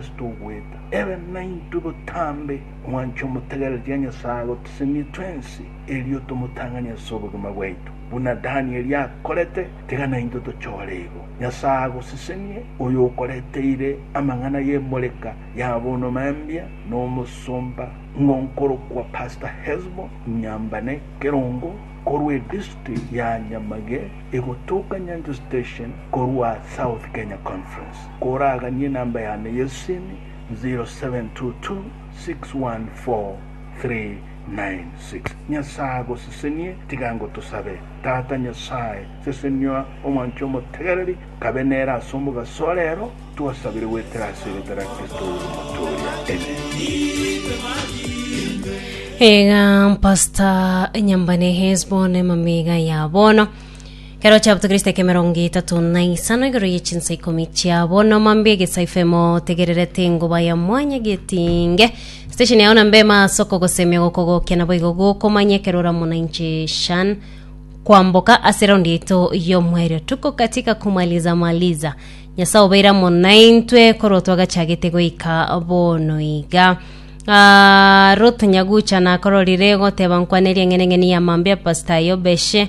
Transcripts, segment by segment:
Titogweta ere naintwe botambe omwancho omotegereria Nyasaye agotisenia twensi, erio tomotang'anie ase obogima bwaito, buna Danieli akorete, tiga naintwe tochore igo. Nyasaye agosesenie, oyo okoreteire amang'ana y'emoreka ya bono mambia, nomosomba ng'a okorokwa Pastor Hesbon Nyambane Kerongo, korwa edisti ya Nyamage, egotoka Nyancha Station, korwa South Kenya Conference. Koraganie enamba yane y'esimi 0722614396. Nyasae agosesenie, tiga ngotosabe. Tata Nyasae, sesenia omwancho omotegereri, kabe nere ase omogaso ore ero twasabire goetera ase erieta ria Kristo oyo omotooria. Amen. Iga Pastor Nyambane Hesbon emamega ya bono. Ekero chiabuto Kristo ekemerongo etato na isano igoro ye chinsa ikomi chiabo na omambia egesaifa emo tegererete engoba ya mwanya getinge station yao na mbema ase okogosemia gokogokia na boigo gokomanya ekero oramo na inche shan kwamboka ase raundi yaito y'omwerio tuko katika kumaliza maliza nyasaye obeire amo naintwe korwa twagachagete goika bono iga Ah, Ruth Nyagucha nakororire goteba nkwane eriang'eneng'eni ya mambia pastor Yobeshe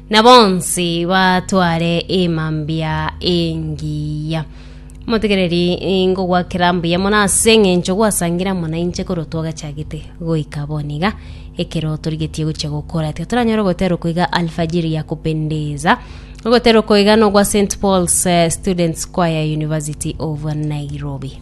na bonsi batware emambia engiya. Motegereri ngogwakera mbuya mono ase eng'encho gwasangira mono inche korwa twagachagete goika bono iga ekero torigetie gochia gokora tiga toranyore ogotera okoiga alfajiri ya kupendeza ogotera okoiga nogwa st paul's eh, students choir university of nairobi